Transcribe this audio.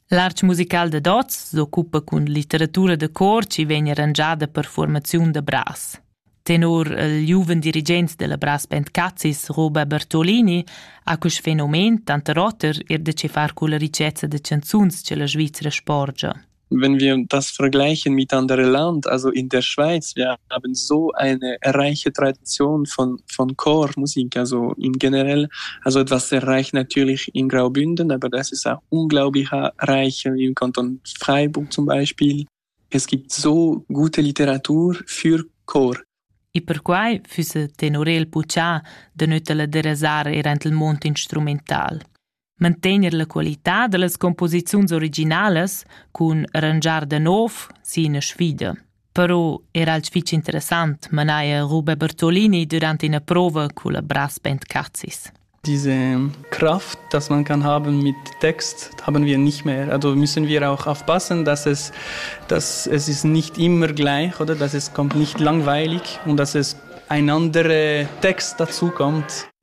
L'artg musical da Dots s'occupa cun litteratura da cor chi vegn arrangiada per formaziun da bras. Tenor il giuven dirigent della Bras Band Cazzis, Roba Bertolini, ha quest fenomen tanter oter er da che far culla ricezza da canzuns che la Svizzera sporgia. Wenn wir das vergleichen miteinander Land, also in der Schweiz, wir haben so eine reiche Tradition von, von Chormusik, also im generell, also etwas sehr reich natürlich in Graubünden, aber das ist auch unglaublich reich im Kanton Freiburg zum Beispiel. Es gibt so gute Literatur für Chor. E perquai füsse tenor el buca de nötela de rasar er ent il mond instrumental. mantegner la qualità dallas composiziuns originalas cun arrangiar da nov sin sfida. Però era alch fich interessant manaja Rube Bertolini durant ina prova culla Brass Band Cazis. Diese Kraft, dass man kann haben mit Text, haben wir nicht mehr. Also müssen wir auch aufpassen, dass es, dass es ist nicht immer gleich oder dass es kommt nicht langweilig und dass es ein anderer Text dazu kommt.